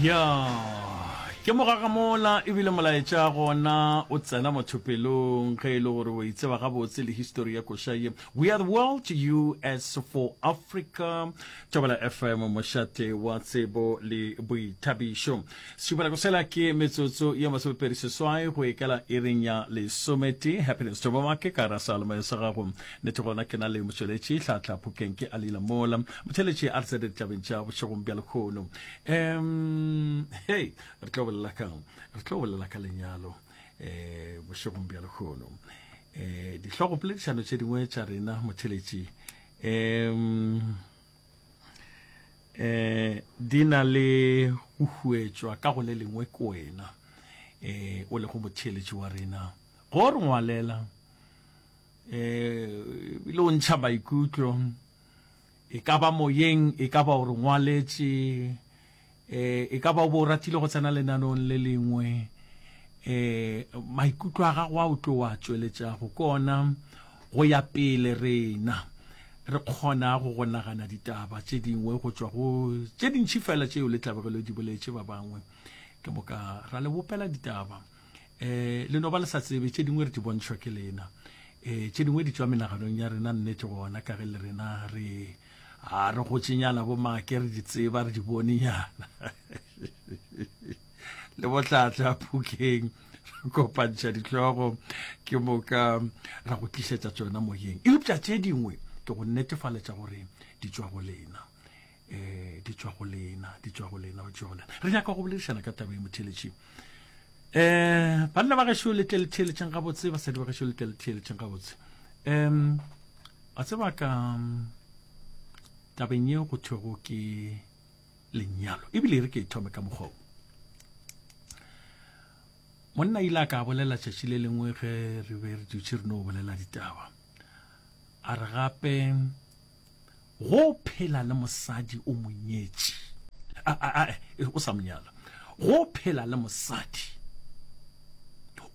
ya ke mogaga mola ebile molaetša gona o tsena motho pelong ge e le gore o itseba gabotse le histori ya koša ye we are the world to you as for africa tšobela fm mošate wa tsebo le boithabišo setšupelako sela ke metsotso ye masomepedi seswai go ekela e reng ya lesometee happiness tšobamake ka ra salome sa gago Nete gona ke na le motšweletši tlhatla phokeng ke a lila mola motšheletši a re tse ditlabeng tša bošegong bja lekgono um hey re tlo bolela ka re tlo bolela ka lenyalo um bošegong bja lekgono um eh, dihlogo poledišano tše dingwe tša rena motšheletši um um di na le go huetšwa ka go le lengwe ke wena um o lego motšheletši wa rena go re ngwalela E bile o ntšha maikutlo, e ka ba moyeng, e ka ba o re ngwaletše, e e ka ba o be o ratile go tsena lenaneong le lengwe. E maikutlo a gago a o tlo a tšweletšago ke ona go ya pele rena re kgonago go nagana ditaba tše dingwe go tšwa go tše dintši fela tšeo le tlabegelo di boletše ba bangwe. Ke moka ra le bopela ditaba. um le no ba le sa tsebe tše dingwe re di bontšhwa ke lena um tše dingwe di tswa menaganong ya rena nnete gona ka ge le rena re a re gotšenyana bo make re di tseba re di bonenyana le bohlatla phukeng re kopantšha ditlogo ke moka ra go tlišetša tsona moyeng eupša tše dingwe ke go netefaletša gore di tswa go lena um di tšwa go lena di tšwa go lena di tšwa go lena re nyaka go boledišana ka taba e motheletšeng um banna ba gešo le tleletheletšeng gabotse basadi ba gešo le tleletheletšeng gabotse um a tseba ka tabeng ye go thwego ke lenyalo ebile e re ke e thome ka mokgwao monna ile a ka bolela tšatši le lengwe ge re be re dutše re no bolela ditaba a re gape Go phela le mosadi o mo nyetše. A, a, a, e, o sa mo nyala. Go phela le mosadi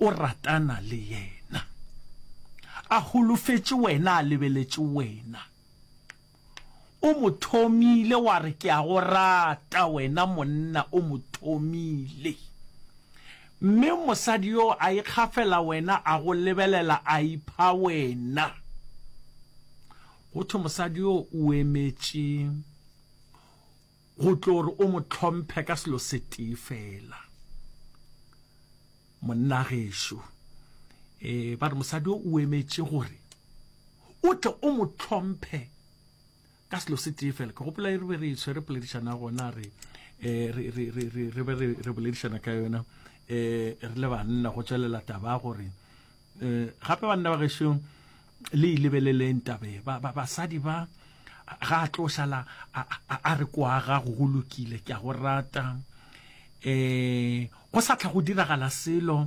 o ratana le yena. A holofetše wena, a lebeletše wena. O mo thomile, wa re, Ke a go rata, wena monna, o mo thomile. Mme mosadi yo a ikgafela wena, a go lebelela, a ipha wena. Go thwe mosadi yo o emetše go tlo gore o mo tlhomphe ka selo se tee fela. Monna gešo eh ba re mosadi yo o emetše gore o tle o mo tlhomphe ka selo se tee fela. Ke gopola e re be re e tshwere poledišana gona re eh re re re re re be re re boledišana ka yona eh re le banna go tswelela taba gore Eh, gape banna ba gešo le ilebeleleng tabe basadi ba ga a tlo sala a re kwa gago go lokile ke a go rata um go sa tlha go diragala selo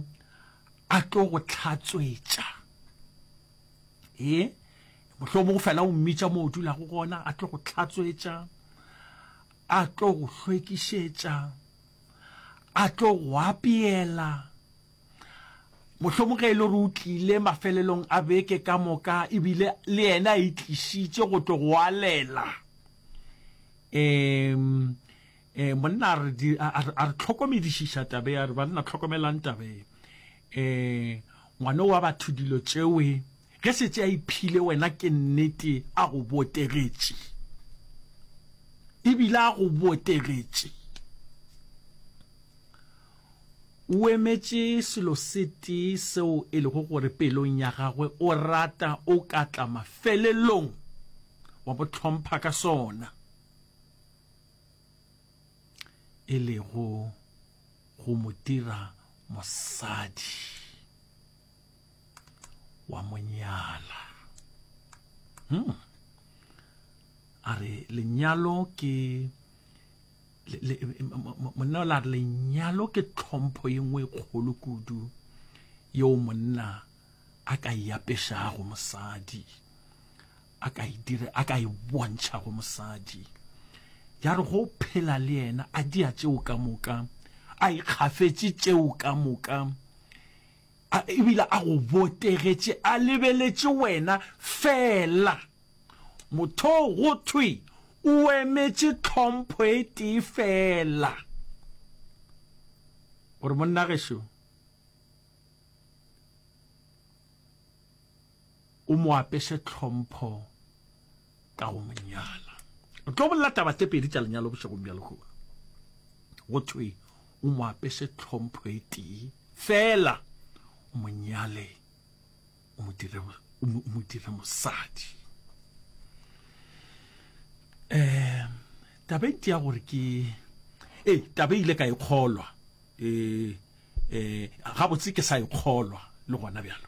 a tlo go tlhatswetša ee motlho mo go fela o mmitša mo o dulago gona a tlo go tlhatswetša a tlo go hlwekišetša a tlo go apeela Mohlomong ge e le gore o tlile mafelelong a beke ka moka ebile le yena a itlišitše go tlo go alela um um monna a re tlhokomedišiša tabe a re banna tlhokomelang tabe um ngwane wa batho dilo tšewe ge setse a iphile wena ke nnete a go botegetše ebile a go botegetše O emetše selo se tee seo e lego gore pelong ya gagwe o rata o ka tla mafelelong wa bo hlompha ka sona, e lego go mo dira mosadi, wa mo nyala. Hmm. A re lenyalo ke monna o la re lenyalo ke tlhompho ye nngwe e kgolo kudu yeo monna a ka e apešago mosadi a ka e dire a ka e bontšha go mosadi ya re go phela le yena a dia tšeo ka moka a ikgafetše tšeo ka moka A ebile a go botegetše, a lebeletše wena feela. Mothoo go thwe o emetše tlhompho e tee feela. O re, Monna gešo, o mo apeše tlhompho ka go mo nyala. O tlo bolela taba tse pedi tša lenyalo bošegong bja lehono. Go thwe o mo apese tlhompho e tee fela o mo nyale o mo dire o mo dire mosadi. Eh tabeng ya gore ke eh tabe ile ka ikgolwa e eh, eh gabotse ke sa ikgolwa le gona bjalo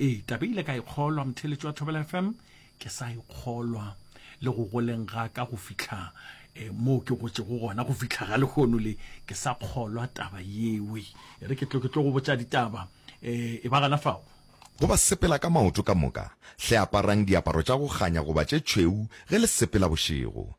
ee tabe ile ka ikgolwa motheletši wa thobela fm ke sa e kgolwa le go goleng ga ka go fihla eh, moo ke gotšego gona go fihla ga lehono le ke sa kgolwa taba yewe e re ke tlo ke tlo go botša ditaba eh, e ba gana fao go ba sepela ka maoto ka moka hle aparang diaparo tša go kganya goba tše tšhweu ge le sepela bošego